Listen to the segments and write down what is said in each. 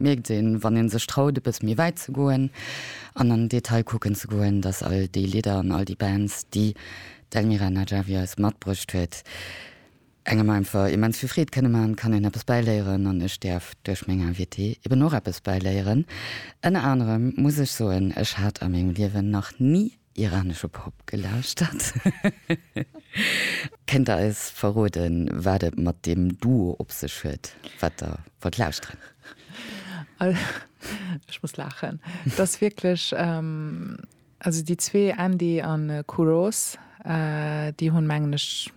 Mierkt een, wann een sech traut e bësse méi wäit ze goen an an Detail kucken ze goen, dass all déi Lidder an all déi Bands, déi d'Elmira Najafi eis matbruecht huet, engem einfach immens vill Freed kënne man, kann een eppes bäiléieren an ech däerf duerch meng Invitée eben och eppes bäiléieren. Ënner anerem muss ech soen, ech hat a mengem Liewen nach ni Iranesche Pop gelauschtert. Kënnt der eis verroden, wat et mat deem Duo op sech huet, wat der wollt lauschteren? Ech muss laachen. Et ass wierklech, also déi zwee Andy a Kouros, déi hunn, mengen ech,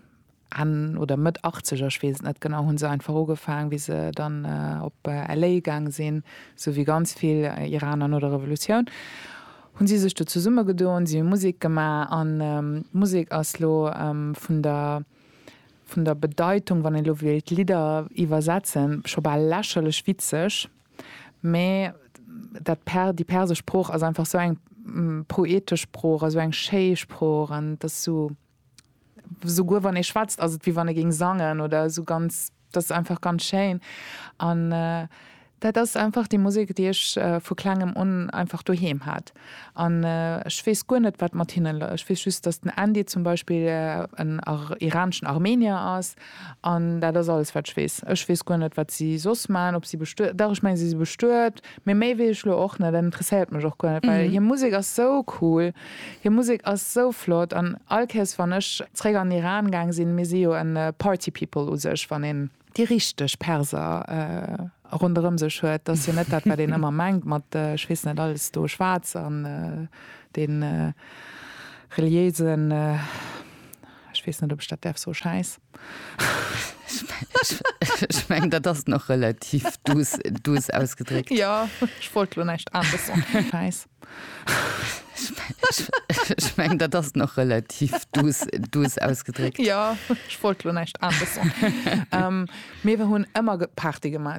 Enn oder Mëtt Achtzeger, ech weess et net genau, hu se einfach ugefaang, wéi se dann op LA gaang sinn, sou wéi ganz vill Iraner no der Revolutioun, hu si sech do zesummegedoen, si hu Musek gemaach an d'Musek ass elo vun der, vun der Bedeitung, wann een elo wéilt d'Lidder iwwersetzen, scho bal lächerlech witzeg, mä dat per, déi persesch Sprooch ass einfach sou eng poetesch Sprooch a sou eng schéi Sprooch an et ass sou. Souguer wann ee schwätzt ass et wéi wann e géing sangen oder esou ganz, dat ass einfach ganz schéin. An dat ass einfach déi Musek déi ech vu klengem un einfach doheem hat. An ech weess guer net wat mat hinnen, ech weess just datt den Andy zum Beispill en iraneschen Armenier ass An dat ass alles, wat ech weess. Ech weess guer net, wat si soss maachen, ob si bestuet, dach, ech mengen, si si bestuet, mee méi weess ech lo och net an interesséiert mech och guer net, well hir Musek ass sou cool, hir Musek ass sou flott an all Kéiers, wann ech zréck an Iran gaang sinn, mir si jo e Party People u sech, wann een déi richteg Perser ronderëm sech huet, dat ass jo net dat, wat een ëmmer mengt mat, ech weess net, alles do schwaarz an dee reliéisen. Ech weess net, ob ech dat däerf soen, Schäiss. Ech mengen, dat ass nach relativ duuss ausgedréckt. Jo, ech wollt elo näischt anescht soen. Schäiss. Ech mengen, dat ass nach relativ duuss ausgedréckt. Jo, ech wollt elo näischt anescht soen. Mir hunn ëmmer Party gemaach.